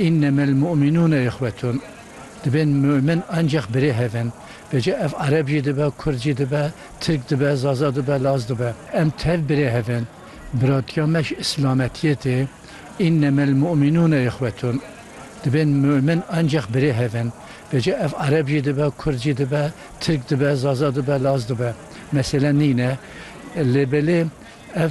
Înneme el mu'minûne ihwetûn, dibên mu'min ancax birêhev in, bêje ev ereb jî dibe, kurd jî dibe, tirk dibe, zaza dibe, laz dibe. Em tev birêhev in. Biratiya me ji îslametiyê tê. Înneme el mu'minûne ihwetûn, dibên mu'min ancax birêhev in, bêje ev ereb jî dibe, kurd jî dibe, tirk dibe, zaza dibe, laz dibe. Mesele nîne. Lê belê ev.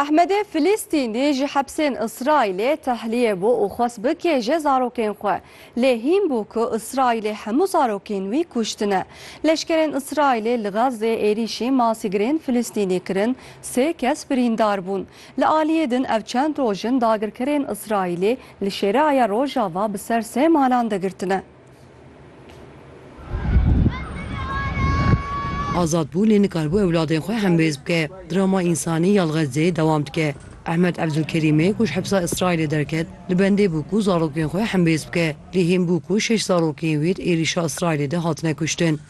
Ehmedê Filîstînî ji hepsên Îsraîlê tehliyê bû û xwest bikêje zarokên xwe. Lê hîn bû ku Îsraîlê hemû zarokên wî kuştine. Leşkerên Îsraîlê li Xezzê êrîşî masîgirên Filîstînî kirin, sê kes birîndar bûn. Li aliyê din ev çend roj in dagirkerên Îsraîlê li Şêreaya Rojava bi ser sê malan digirtine. Azad bû lê nikaribû ewladên xwe hembêz bike. Drama însanî ya li Xezzeyê dewam dike. Ehmed Ebdulkerîmê ku ji hepsa Îsraîlê derket, li bendê bû ku zarokên xwe hembêz bike. Lê hîn bû ku şeş zarokên wî di êrîşa Îsraîlê de hatine kuştin.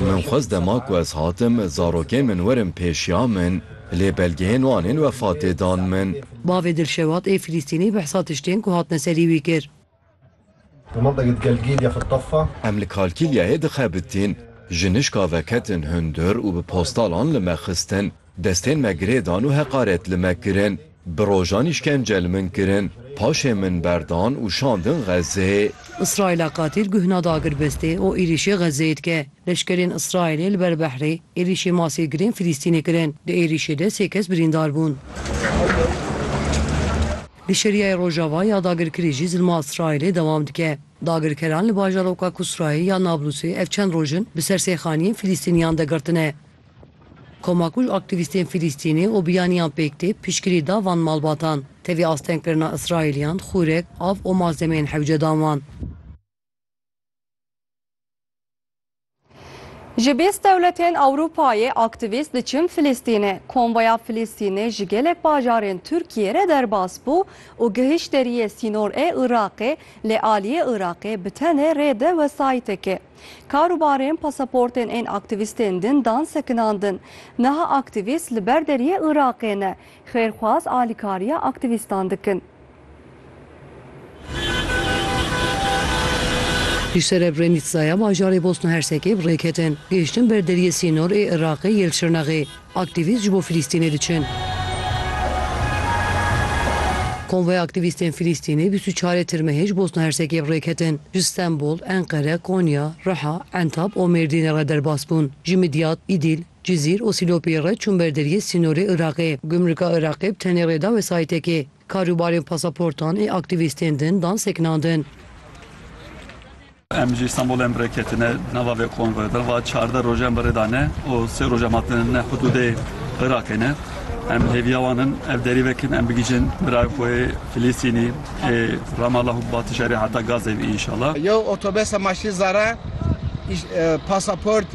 Min xwest dema ku ez hatim zarokên min werin pêşiya min, lê belgeyên wan ên wefatê dan min. Bavê Dilşewat ê Filîstînî behsa tiştên ku hatine serî wî kir. Em li Kalkîlyayê dixebitîn. Jinişka veketin hundir û bi postalan li me xistin. Destên me girê dan û heqaret li me kirin. Bi rojan îşkence li min kirin. Paşê min berdan û şandin Xezzeyê. Îsraîla qatîl guhna dagir bistê û êrîşê Xezzeyê dike. Leşkerên Îsraîlê li ber behrê êrîşê masîr girên Filîstînê kirin. Di êrîşê de sê kes birîndar bûn. Li Şeriayê Rojava ya dagirkirî jî zilma Îsraîlê dewam dike. Dagirkeran li bajaroka Kusrayê ya Nablusê ev çend roj in bi ser sêxaniyên Filîstîniyan de girtine. Koma ku ji aktîvîstên Fîlîstînê û biyaniyan pêk tê piştgirî da van malbatan, tevî astengkirina Îsraîliyan xûrek, av û malzemeyên hewce dan wan. Ji bîst dewletên Ewropayê aktîvîst diçin Fîlîstînê. Konvoya Fîlîstînê ji gelek bajarên Tirkiyê re derbas bû û gihîşt deriyê sînor ê Iraqê lê aliyê Iraqê bi tenê rê de wesayîtekê. Kar û barên pasaportên ên aktîvîstên din dan sekinan din. Niha aktîvîst li ber deriyê Iraqê ne, xêrxwaz alîkariya aktîvîstan dikin. Ji Serebrenîtsaya bajarê Bosna Hersekê bi rêketin, gihiştin ber deriyê sînor ê Iraqê yê li Şirnexê. Aktîvîst ji bo Filîstînê diçin. Konvoya aktîvîstên Filîstînê bîst û çar ê Tirmehê ji Bosna Hersekê bi rê ketin. Ji Stenbol, Enqere, Konya, Riha, Entab û Mêrdînê re derbas bûn. Ji Midyat, Îdîl, Cizîr û Sîlopiyê re çûn ber deriyê sînorê Iraqê. Gumrika Iraqê bi tenê rê da wesayîtekê. Karûbarên pasaportan ê aktîvîstên din dan sekinandin. Em ji Îstanbûlê em rê ketine di nava vê konvoya de. Va çardeh roj em bi rê de ne û sê roj em hatine ne hudûdê Iraqê ne. Em hêviya wan in ev derî vekin em bigihîjin birayê xwe yê Filîstînî ê Ramallah û Batîşerê heta Gazeyê îşallah. Yew otobesa maşînzara, pasaportê.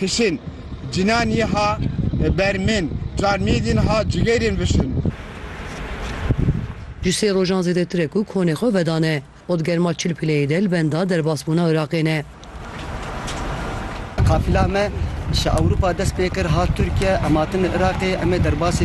Kişin, cinan yê ha ber min. Çar mîdin ha cigêrên vişin. Ji sê rojan zêdetir e ku konê xwe vedane û di germa çil pileyê de li benda derbasbûna Iraqê ne. Qafila me ji Ewropa dest pê kir hat Tirkiye, em hatine Iraqê, em ê derbasî